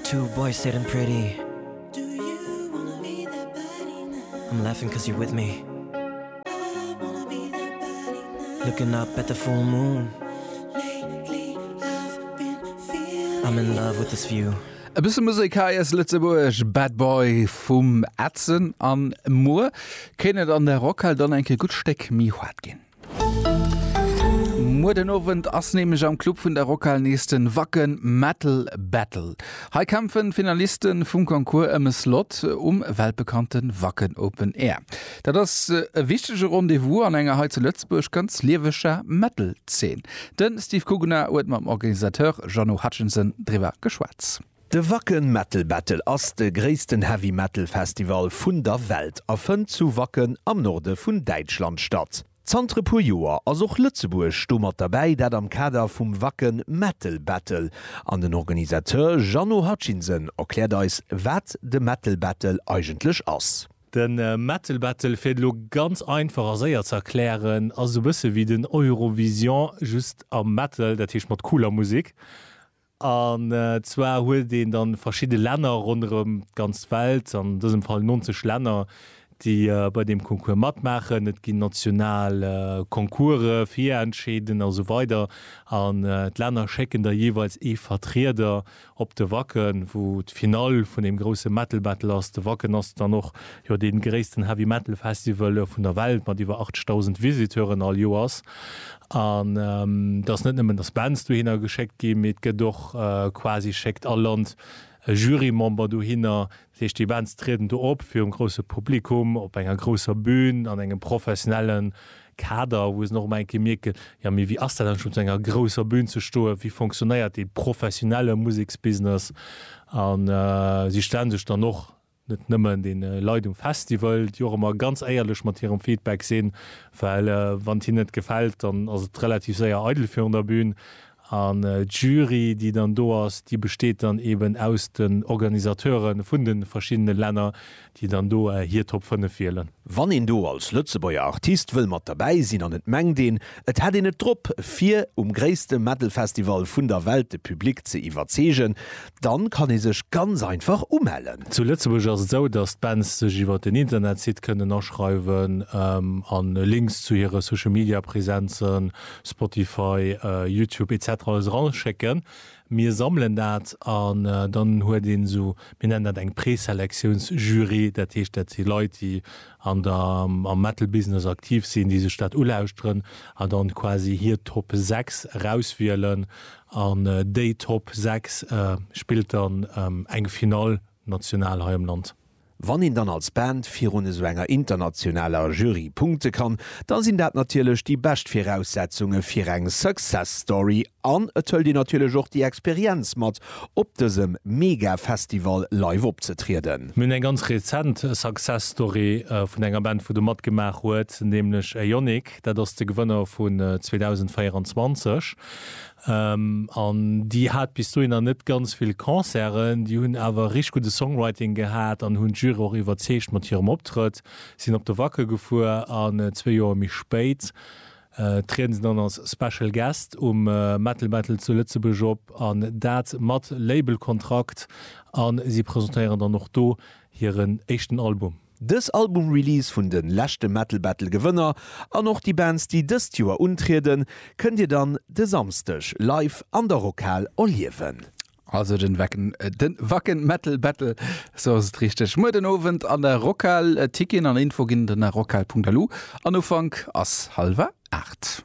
Two boys sitting pretty I'm laughing cause you're with me Looking up at the full moon I'm in love with this view E bësse Musek hei aus Lëtzebuerg, Bad Boy vum Edson. An muer kéint et an der Rockhal dann eng Kéier gutt Stéck méi hoart ginn. Muer den Owend ass nämlech am Club vun der Rockhal nees den Wacken Metal Battle. Hei kämpfen d'Finalisten vum Concours em e Slot um weltbekannten Wacken Open Air. Dat ass e wichtege Rendez-vous an enger hei zu Lëtzebuerg ganz lieweger Metal Zeen. Den Steve Kugner huet mam Organisateur Jeannot Hutchinson driwwer geschwat. De Wacken Metal Battle ass de gréissten Heavy Metal Festival vun der Welt a fënnt zu Wacken am Norde vun Däitschland statt. Zanter e puer Joer ass och Lëtzebuerg do mat derbäi, dat am Kader vum Wacken Metal Battle an den Organisateur Jeannot Hutchinson erkläert eis wat de Metal Battle eigentlech ass. De Metal Battle, fir et elo ganz einfach a séier ze erklären, ass esou bësse wéi den Eurovision, just am Metal, dat heescht mat cooler Musek. An zwar huet een da verschidde Länner ronderëm d'ganz Welt, an dësem Fall 90 Länner, déi bei deem Concours matmaachen. Et ginn national Concourse, Virentscheeden a sou weider an d'Länner schécken da jeeweils ee Vertrieder op de Wacken, wou d'Finall vun deem grousse Metal Battle ass. De Wacken ass dann och jo dee gréissten Heavy Metal Festival vun der Welt mat iwwer 80.000 Visiteuren all Joers. An et ass net nëmmen, datt Bands dohinner geschéckt ginn, mee et gëtt och quasi, schéckt all Land e Jurymember dohinner. Dat heescht, déi Bands trieden do op virum grousse Publikum, op enger grousser Bün, an engem professionelle Kader, wou se dann och ëmmer eng Kéier mierken, Jo, mee wéi ass dat eigentlech, op esou enger grousser Bün ze stoen? Wéi fonctionnéiert dee professionelle Museksbusiness? A si stelle sech dann och net nëmmen den Leit um Festival, déi och ëmmer ganz éierlech mat hirem Feedback sinn, well wann et hinnen net gefält, dann ass et relativ séier eidel virun der Bühn. An d'Jury, déi dann do ass, déi besteet dann eben aus den Organisateure vun de verschiddene Länner, déi dann do hir Top 5 wielen. Wann een do als Lëtzebuerger Artist wëll mat derbäi sinn an et mengt een, et hätt een et drop, fir um gréisste Metal-Festival vun der Welt de Public ze iwwerzeegen, Dann kann ee sech ganz einfach umellen. Zu Lëtzebuerg ass et esou, dass d'Bands sech iwwer den Internetsite kënnen aschreiwen an Links zu hire Social Media Präsenzen, Spotify, Youtube etc. Alles eraschécken. Mir sammelen dat an dann huet een esou, mir nennen dat eng Preselektiouns Jury, dat heescht dat si Leit déi an der, am Metal Business aktiv sinn, déi sech dat ulauschteren an dann quasi hir Top 6 erauswielen An déi Top 6 spillt dann eng Finall national hei am Land. Wann een dann als Band virun esou enger internationaler Jury punkte kann, da sinn dat natierlech déi bescht Viraussetzunge fir eng Success Story an et hëlt een natierlech och déi Experienz mat, op dësem mega Festival live opzetrieden. Mir hunn eng ganz rezent Success Story vun enger Band, wou de matgemaach huet, nämlech Ionic. Beck, dat ass de Gewënner vun 2024. An déi hat bis dohinner net ganz vill Concerten. Déi hunn awer richteg gudde Songwriting gehat an hunn d'Jury och iwwerzeegt mat hirem Optrëtt. Si sinn op de Wacken gefuer an zwee Joer méi spéit trieden se dann als Special Guest um Metal Battle zu Lëtzebuerg op an dat mat Labelkontrakt a si presentéieren dann och do hiren éischten Album. Dës Album-Release vun de leschte Metal Battle Gewënner an och déi Bands déi dëst Joer untrieden, kënnt Dir dann de Samsdeg live an der Rockhal erliewen. Also den Wacken Metal Battle, sou ass et richteg, muer den Owend an der Rockhal. Ticketen an Info ginn der na rockhal.lu an Ufank ass halwer 8.